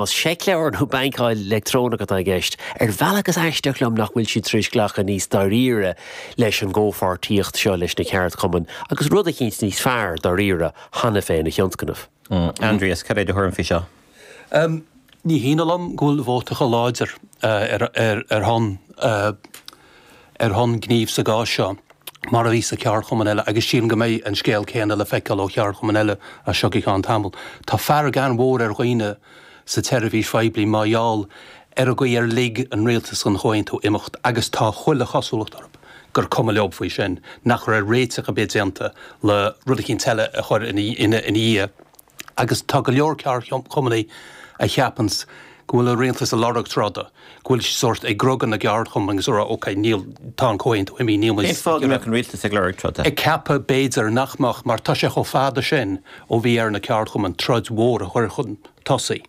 Más seicleabhair nó bankáil leictreonach atá i gceist, ar bhealach is aisteach liom nach bhfuil siad tar éis glacadh níos dáiríre leis an gcomhpháirtíocht seo leis na ceardchumainn agus rud eicínt níos fearr dáiríre cheana féin a thionscnamh. Aindrias, cad é do thuairim faoi seo? Ní hionadh liom go bhfuil vótacha láidir ar shon ar shon gnímh sa gcás seo, mar a bhí sa cheardchumann eile, agus sílim go mbeidh an scéal céanna le feiceáil ó cheardchumainn eile as seo go ceann tamaill. Tá fearg an-mhór ar dhaoine sa tseirbhís phoiblí mar gheall ar an gcaoi ar lig an rialtas dhon Chomhaontú imeacht agus tá chuile chosúlacht orthub gur cuma leob faoi sin, nach raibh réiteach ar bith déanta le rud eicínt eile a chur ina dhiaidh. Agus tá go leor ceardchumannaí a cheapanns go bhfuil an Rialtas a' lorg troda, go bhfuil siad sórt ag griogadh na gceardchumann agus a' rá OK, níl, tá an Comhaontú imithe, níl muid, Cén fáth go mbeadh an Rialtas ag lorg troda? Ag ceapadh b'fhéidir nach mbeadh mar tá sé chomh fada sin ó bhí ar na ceardchumainn troid mhór a chur chun tosaigh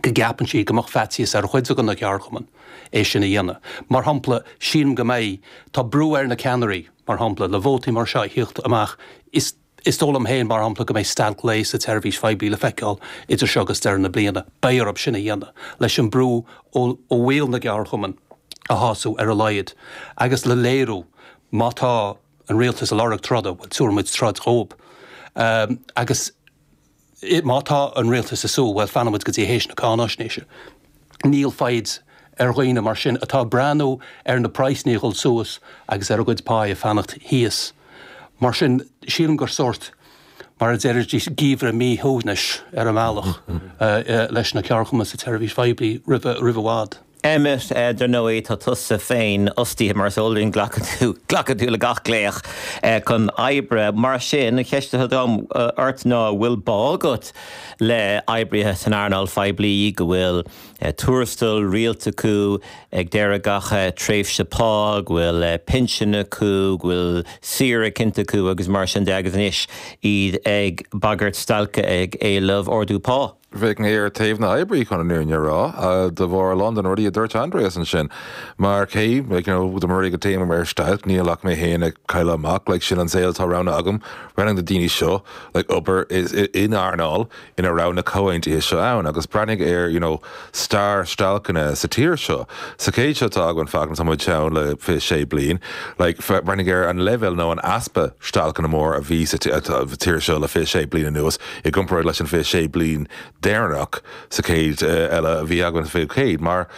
go gceapann siad go mbeadh faitíos ar chuid ag na ceardchumainn é sin a dhéanamh. Mar shampla, sílim go mbeidh, tá brú ar na ceannairí, mar shampla, le vótaí mar seo a thíocht amach, is. Is dóigh liom féin, mar shampla, go mbeidh stailc lae sa tseirbhís phoiblí le feiceáil idir seo agus deireadh na bliana. Beidh orthub sin a dhéanamh, leis an brú ó bhaill na gceardchumann a shású ar a laghad agus le léiriú, má tá an rialtas a' lorg troda, bhuel, tabharfaidh muid troid dhóibh. Agus. Má tá an Rialtas ag súil, bhuel, fanfaidh muid go dtí théis na cáinaisnéise. Níl foighid ag daoine mar sin atá ag breathnú ar na praghsannaí a' dhul suas agus ar a gcuid pá ag fanacht thíos. Mar sin, sílim gur sórt, mar a deirtear, geimhreadh míshuaimhnis ar an mbealach leis na ceardchumainn sa tseirbhís phoiblí roimh i bhfad. Emmet, dar ndóigh tá tusa féinfhostaithe, mar is eol dúinn, glacann tú, glacann tú le gach glaoch chun oibre. Mar sin, an cheist atá agam ort ná an bhfuil bá agat le oibrithe san earnáil phoiblí go bhfuil tuarastal rialta acu ag deireadh gach tréimhse pá, go bhfuil pinsean acu, go bhfuil saoire cinnte acu agus mar sin de agus anois iad ag bagairt stailce ag éileamh ardú pá? Bheadh mé ar taobh na n-oibrithe, chun an fhírinne a rá, de bharr a lán de na rudaí a dúirt Aindrias ansin. Mar cé, like, you know, dá mba rud é go dtéim ar stailc, níl ach mé féin ag cailleadh amach, like, sin an saol atá roghnaithe agam, roghnaigh na daoine seo, like, obair in earnáil ina raibh na comhaontuithe seo ann, agus breathnaigh ar, you know, stair stailceanna sa tír seo, sa chéad seo atá againn, féach, tá muid ann le fiche sé bliain, like, breathnaigh ar an leibhéal nó an easpa stailceanna mór a bhí sa tír seo le fiche sé bliain anuas, i gcomparáid leis an 26 bliain deireanach sa chéad eile ná a bhí againn sa 20ú céad, mar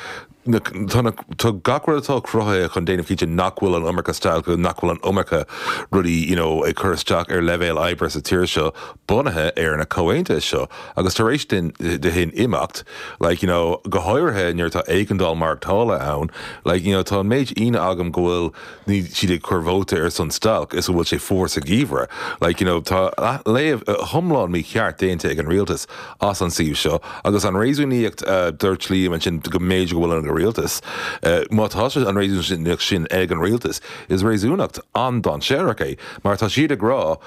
tá gach rud atá cruthaithe chun déanamh cinnte nach bhfuil an iomarca stailceanna, nach bhfuil an iomarca rudaí you know ag cur isteach ar leibhéal oibre sa tír seo bunaithe ar na comhaontuithe seo agus tar éis deireadh de sin imeacht like you know go háirithe nuair atá éigeandáil maireachtála ann like you know tá an méid daoine agam go bhfuil níl siad ag cur vóta ar son stailc, toisc go bhfuil sé fuar sa gheimhreadh. Like, you know, tá léamh iomlán mícheart déanta ag an rialtas as an suíomh seo agus an réasúnaíocht a dúirt Liam ansin go mb'fhéidir go bhfuil an rialtas, má tá an réasúnaíocht sin ag an rialtas, is réasúnaíocht an-dainséarach é mar tá siad ag rá,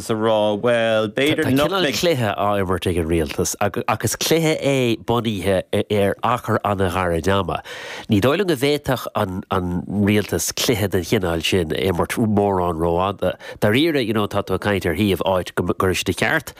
's a rá, bhuel, b'fhéidir nach mbeidh. Tá cineál cluiche á imirt ag an Rialtas ach is cluiche é bunaithe ar achar an-ghairid ama. Ní dóigh liom go bhféadfadh an Rialtas cluiche den chineál sin a imirt mórán rófhada. Dáiríre, you know, tá tú ag caint ar shuíomh, áit, gur de cheart,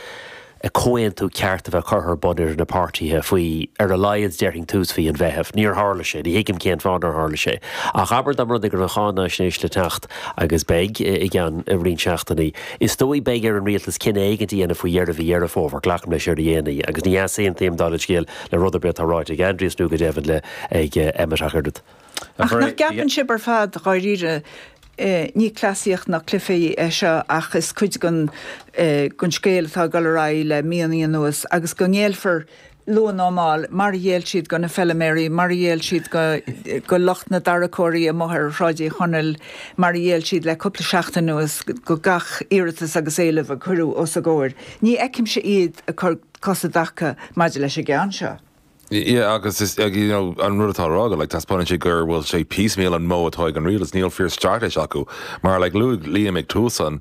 comhaontú ceart a bheith curtha ar bun idir na páirtithe faoi ar a laghad, déarfainn, tús mhí an Mheithimh. Níor tharla sé. Ní thuigim cén fáth nár tharla sé. Ach abair, tá an rud, an cháinaisnéis le teacht, agus beidh, i gceann roinnt seachtainí, is dóigh, beidh ar an rialtas cinneadh éigin a dhéanamh faoi dheireadh mhí Dheireadh Fómhair, glacaim leis, ar a dhéanaí, agus ní easaontaím, dála an scéil, le rud ar bith atá ráite ag Aindrias nó, go deimhin, le, ag, Emmet ach oiread. Ach nach gceapann sibh ar fad, dháiríre, ní cleasaíocht ná cluiche é seo ach is cuid den scéal atá ag dul ar aghaidh le míonna anuas agus go ngéillfear luath nó mall, mar a ghéill siad do na feilméaraí, mar a ghéill siad do lucht na dtarracóirí amuigh ar Shráid Uí Chonaill, mar a ghéill siad le cúpla seachtain anuas do gach iarratas agus éileamh a cuireadh os a gcomhair? Ní fheicimse iad ag cur cos i dtaca maidir leis an gceann seo. Yeah, agus is, you know, an rud atá á rá agat, like, taispeánann sé gur, bhfuil sé piecemeal an modh atá ag an rialtas, níl fíor-straitéis acu, mar, like, luaigh Liam ag tús an,